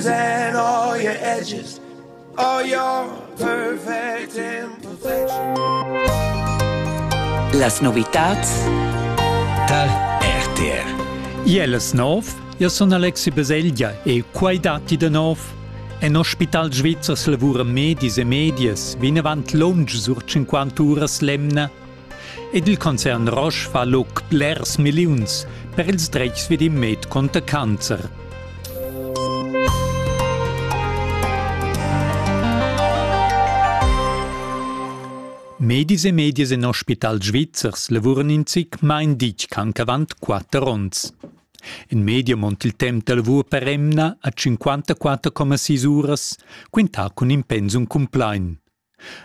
and all your edges, all your perfect imperfection. Las novitats tal RTR. Jeles nov, io sun Alexi Baselgia e quai datti de nov. En Hospital Svizzers lavura medis e medias vinavant lunsch sur 50 uras l'emna Ed il concern Roche fa luc blers milliuns per ils dretgs vid il med conter cancer. Medis e medias en ospital svizzers lavuran in zic main ditg ch'anc avant quatter onns. In media mont il temp da lavur per emna a 54,6 uras, quintà cun in pensum cumplain.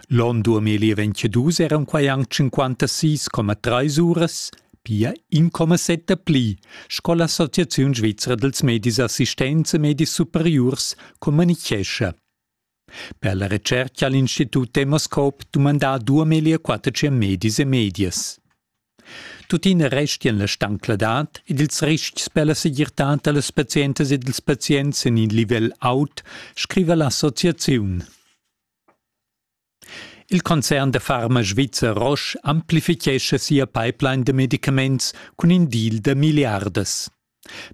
L'on 2022 eran quai anc 56,3 uras, pia 1,7 pli, sco l'Associaziun svizra dals medis assistents e medis superiurs communitgescha. Per la retschertga ha l'Institut Demoscope dumandà 2400 medis e medias. Tuttina restian la stancladad ed ils ristgs per la segirtad da las pazientas ed ils pazients en in livel aut, scriva l'associaziun. Il concern da farma svizzer Roche amplifichescha sia pipeline da medicaments cun in deal da milliardas.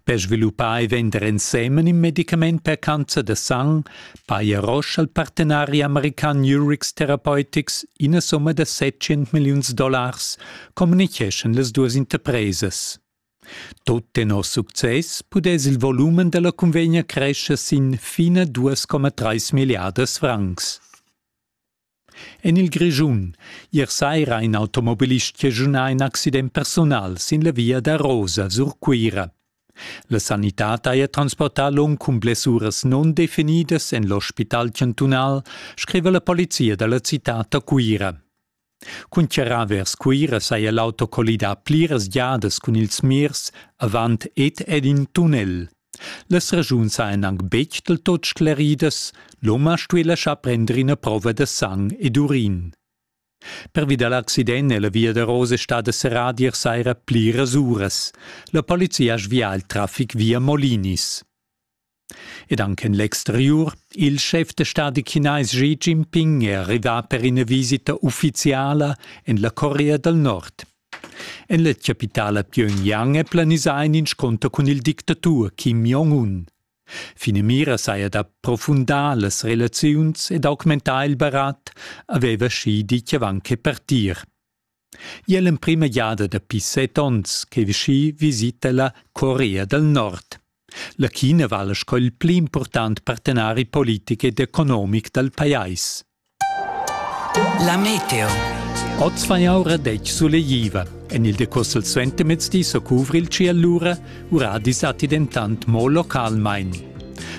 Per sviluppar e vender ensemen in medicament per cancer da sang paja Roche al partenari american Urix Therapeutics ina summa da 700 milliuns dollars, communicheschan las duas interpresas. Tut tenor success pudess il volumen dalla cunvegna crescher sin fina 2,3 milliardas francs. En il Grischun ier saira in automobilist chegiunà in accident personal sin la via da Rosa sur Cuira. La sanitad haja transportà l'um cun blessuras non definidas en l'ospital chantunal, scriva la polizia da la citad da Cuira. Cun charrà vers Cuira saja l'auto collidà pliras giadas cun ils mirs avant ed ed in tunnel. Las raschuns sajan anc betg del tot scleridas, l'homa stuì laschar prender ina prova da sang ed urin. Pervi da l'accident è la via da Rose stada serrada ier saira pliras uras. La polizia ha svià il traffic via Molinis. ed anche en l'exteriur il schef da stadi chinais Xi Jinping è arrivà per ina visita uffiziala en la Corea dal Nord. En la chapitala Pyongyang è planisà in inscunter cun il dictatur Kim Jong-un. Finamira saja d'approfundar las relaziuns ed augmentar il barat, aveva Xi ditg avant che partir. I è l'emprima giada dapi set onns che Vichy visita la Corea dal Nord. La China vala sco il pli important partenari politic ed economic dal pajais. La meteo. Oz fa jau radetg sulegliva. En il decoss al suentermezdi so cuvri il ci allura, uradis atti dentant mo localmain.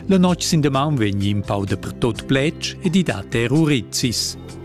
La notg sin damaun vegni in pau dapertut plec ed i dat er urizis.